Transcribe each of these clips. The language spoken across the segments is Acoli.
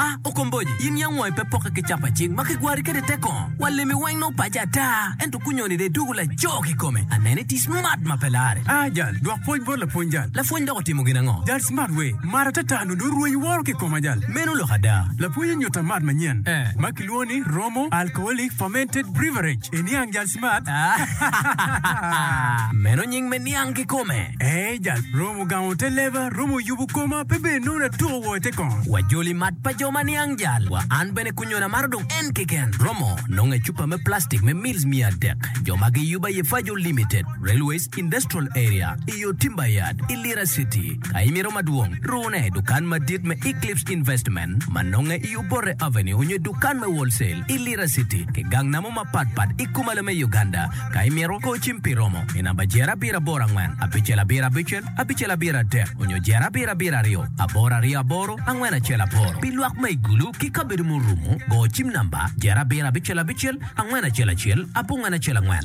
A Okomboji, in yam wangi pe pokke ki capa cing ma kigwari kwede i te kongo? Wa limi weng nongo paci ata, ento kunyoni dong idwogo laco kikome. Aneno iti smart ma pe larre. A Jal, dwok pwoc bot lapwony jal. Lapwony dok otimo gin ango? Jal, Smart we mar atata nongo dong rwenyi woro ki ikoma jal. Meno lok ada. Lapwony onyutta mat manyen ma kilwongo ni Romo Alcoholic Fermented Beverage. Eniang jal. Meno nying me niang kikome. Ee, jal romo gamo te leba, romo yubo koma, pe bene nongo na tuko woko i te kong. Wa joli mat pa jo ma niang jal wa. An bene kunyona maro dong en keken. Romo nonge cupa me plastic me mils mia adek, jo ma giyuba ye Fajo Limited, Railways, Industrial Area, i yo Timber Yard i Lira City. Ka imito madwong, rune dukan madit me Eclipse Investment ma nonge i Obote Avenue onyo dukan me Wholesale i Lira City ki gang namo mapat pat i Kumalo me Uganda. Ka imito, kor cim pi romo i namba Jere Abiro Aboro Angwen Abicel Abiro Abicel Abicel Abiro Adek onyo Jere Abiro Abiro Aryo Aboro Aryo Aboro Angwen Acel Aboro. Pi lwak ma i Gulu ki kabedo murumo, go cim namba Jere Abiro Abicel Abicel Angwen Acel Acel Abongwen Acel Angwen.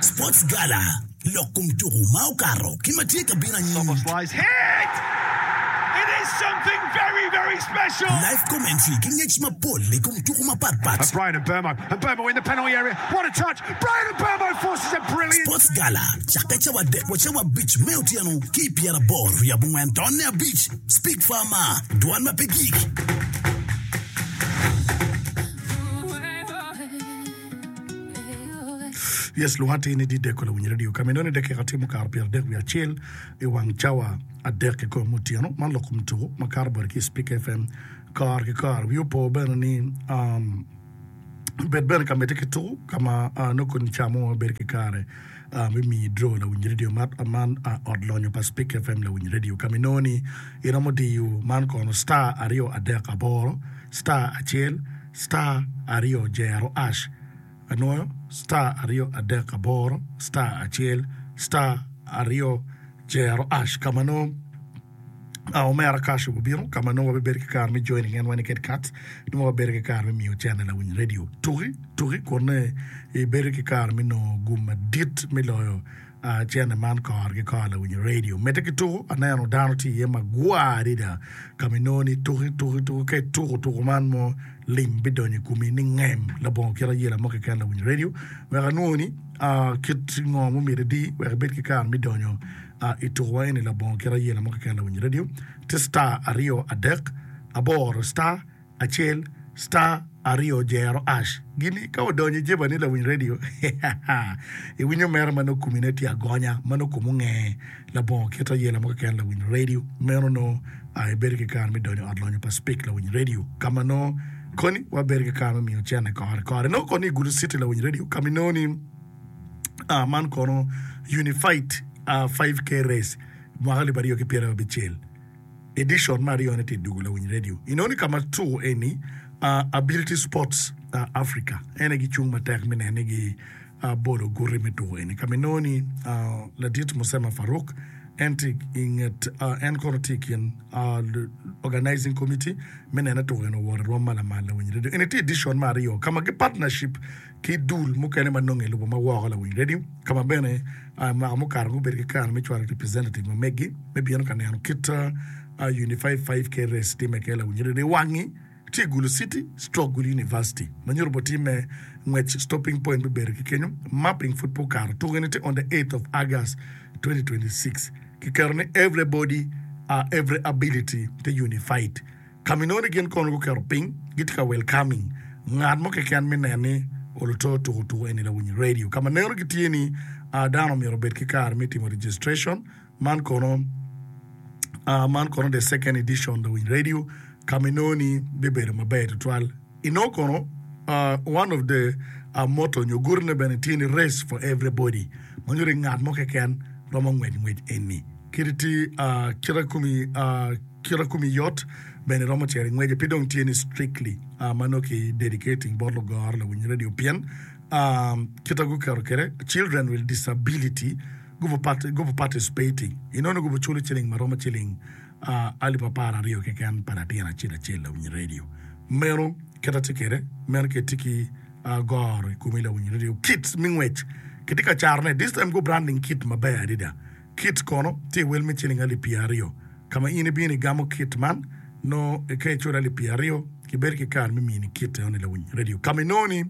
Sports Gala, Lok kom tuku ma okato ki ma tye ka bino anyim. Live commentary ki ngec mapol i kom tuku mapat pat. Sports Gala cakke cawa adek wa cawa abic me otyeno ki i pyera boro ryo abongwen tonne abic. Speak Farmer, Dwan ma pe gik. Yes, luwate ni dideko lawinyo radio ka meno ni dakika timo karo pyero adek wiye acel i wang cawa adek ki kom otyeno man loko mutuku ma karo bwate ki Speaker FM kor ki kor. Wi opo bene ni um, bed bene ka mete ki tuku ka ma uh, nongo koni camo ma bedo ki kare uh, me miyi dro lawinyo radio mat uh, man uh, ot lonyo pa Speaker FM lawinyo radio ka meno ni iromo diyo man kono star aryo adek aboro star acel star aryo jero ash anwoyo star aryo adek aboro star acel star aryo jero ash kama nongo a omera cash obubino kama nongo wabibedo ki kare me joining en wani ked cards nongo wabedo ki kare me miyo channel lawiny radio tuki tuki kun ibedo ki kare me nongo gum madit me loyo A Cene man kor ki kor lawinyo redio medde ki tuko, aneno dano tye iye magwar adada ka ma inongo ni ituko ituko ituko. Ka ituko tuko man mo, lim bidonyo i komi ni ngem labongo kit ayela mo keken. Lawinyo redio wek anwongo ni kit ngo ma omyero idi wek ibed ki kare me donyo i tukowa eni labongo kit ayela mo keken. Lawinyo redio tye star aryo adek aboro star. acel star aryo jero ash gini ka odonyo ijeba ni lawiny radio iwinyo mere ma nongo kumi ne tye agonya ma nongo kumi onge labongo kit ayela mo keken lawiny radio meno nongo a ibedo ki kare me donyo ot lonyo pa speak lawiny radio ka ma nongo koni wa bedo ki kare me miyo cene kore kore nongo koni igulu city lawiny radio ka mi nongo ni a man kono unified a 5k race mwaka libaryo ki pyera abicel Edicon me aryo ne tye dwogo lawiny redio inongo ni ka ma tuko eni Ability Sports Africa en aye gicung matek me neno ni gi bolo guti me tuko eni ka ma inongo ni ladit Musema Faruk en tye i nget en kono tye i kin organizing committee me neno ni tuko eni owoto i rwom ma lamal lawiny redio eni tye edicon me aryo ka ma gi partnership ki dul mukene ma nonge lubo ma woko lawiny redio ka ma bene mwaka mukato gubedo ki kare me cwalo representative ma megi me bino ka neno kit Unified 5KRS timme ke lawiny redio wangi tye Gulu City Stroke Gulu University ma nyuto bo timme ngwec stopping point me bedo ki kenyo mapping food po kato tuke ni te on the 8th of August 2026 ki keto ni everybody uh, every ability te unified Ka ma inongo ni gin kono guketo piny gitye ka welcoming ngat mo keken me nen ni oluto tuko tuko eni lawiny radio. Ka ma neno gitye ni a dano omyero obed ki kare me timo registration man kono a man kono the second edition lawiny radio ka ma inongo ni bibedo maber tutwal. Inongo kono one of the motto nyo guti ne bene tye ni race for every body ma nyuto ni ngat mo keken romo ngwec ngwec eni. Kit ti kite kumi kite kumi yot bene romo cero ingwece pe dong tye ni strictly ma nongo ki dedicating bot lugoro lawiny radio pien kite guketo kede children with disability gubu participating inongo ni gubu culo ciling ma romo ciling A Alip apar aryo keken pa latin acel acel lawiny redio. Meno kit atye kwede, meno kit tye ki goro i komi lawiny redio. Kit me ngwec kitye ka carone, this time go branding kit maber adada. Kit kono tye i wel me ciling alip pyer aryo. Ka ma in ibino igamo kit man, nongo ka iculo alip pyer aryo, kibedo ki kare me mini kit enoni lawiny redio. Ka ma inongo ni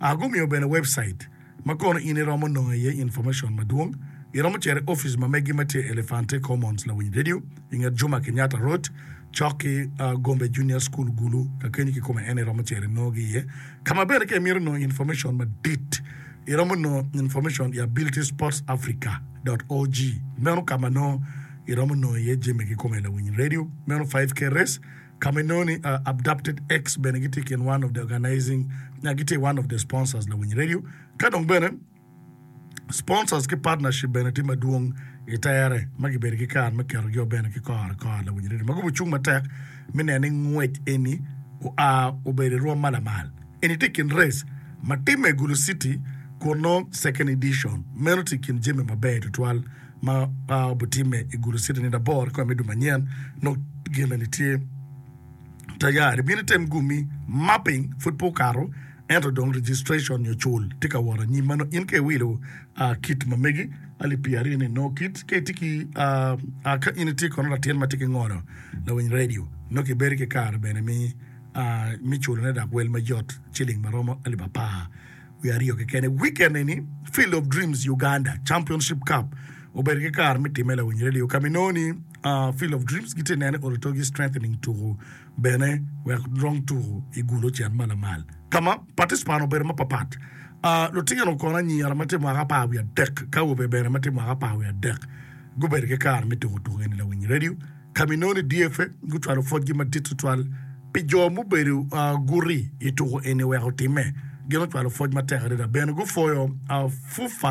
gumiyo bene webcite. ma kono in iromo nongo iye information madwong, iromo cito i ofice ma megi ma tye i Elefante Commons, Lawiny Radio, i nget Juma Kenyatta Road, cok ki Gombe Junior School, Gulu. Ka kenyi kikome en iromo cito inongogi iye. Ka ma bene ka imito nongo information madit, iromo nongo information i abilitysportsafrica dot org. Meno ka ma nongo iromo nongo iye jami kikome, Lawiny Radio, meno 5K Race, Kama inongo ni Abducted X bene gitye i kin one of the organizing nya gitye i one of the sponsors Lawiny Radio ka dong bene sponsors ki partnership bene tye madwong i tere ma gibedo ki kare me keto jo bene ki kore kore Lawiny Radio ma gubo cung matek me neno ni ngwec eni oa obedo i rwom ma lamal eni tye i kin race ma timme i Gulu City kun nongo second edition meno tye i kin jami maber tutwal ma pa obutimme i gulu citi nino aboro kikome me dwe manyen nok gin eni tye tayari bino item gumi mapping pud pe okato ento dong registration nyo cul tye ka wot anyim manongo in ka iwilo uh, kit mamegi alip pi aryo ni nongo kit ka itye ki uh, uh, ka in itye kono latin ma tye ki ngolo lawiny radio nongo kibedo ki kare bene mi uh, mi culone dak wel mayot ciling maromo alip apar Wiye aryo kekeni wikend eni, Field of Dreams Uganda Championship Cup obedo ki kare me timme lawiny redio ka ma inongo ni Field of Dreams gitye ka neno Ototogi Strengthening tuku bene wek rong tuku i gul ocen ma lamal ka ma paticipant obedo mapatpat. Lutino kono anyira ma tye mwaka apar wiye adek ki awobe bene ma tye mwaka apar wiye adek gubedo ki kare me tuku tuku eni lawiny redio. ka ma inongo-ni DFF gucwalo pwodgi madit tutwal pi jo mubedo guti i tuko eni wek otimme. Gin ocwalo pwoc matek adada. Bene gupwoyo FUFA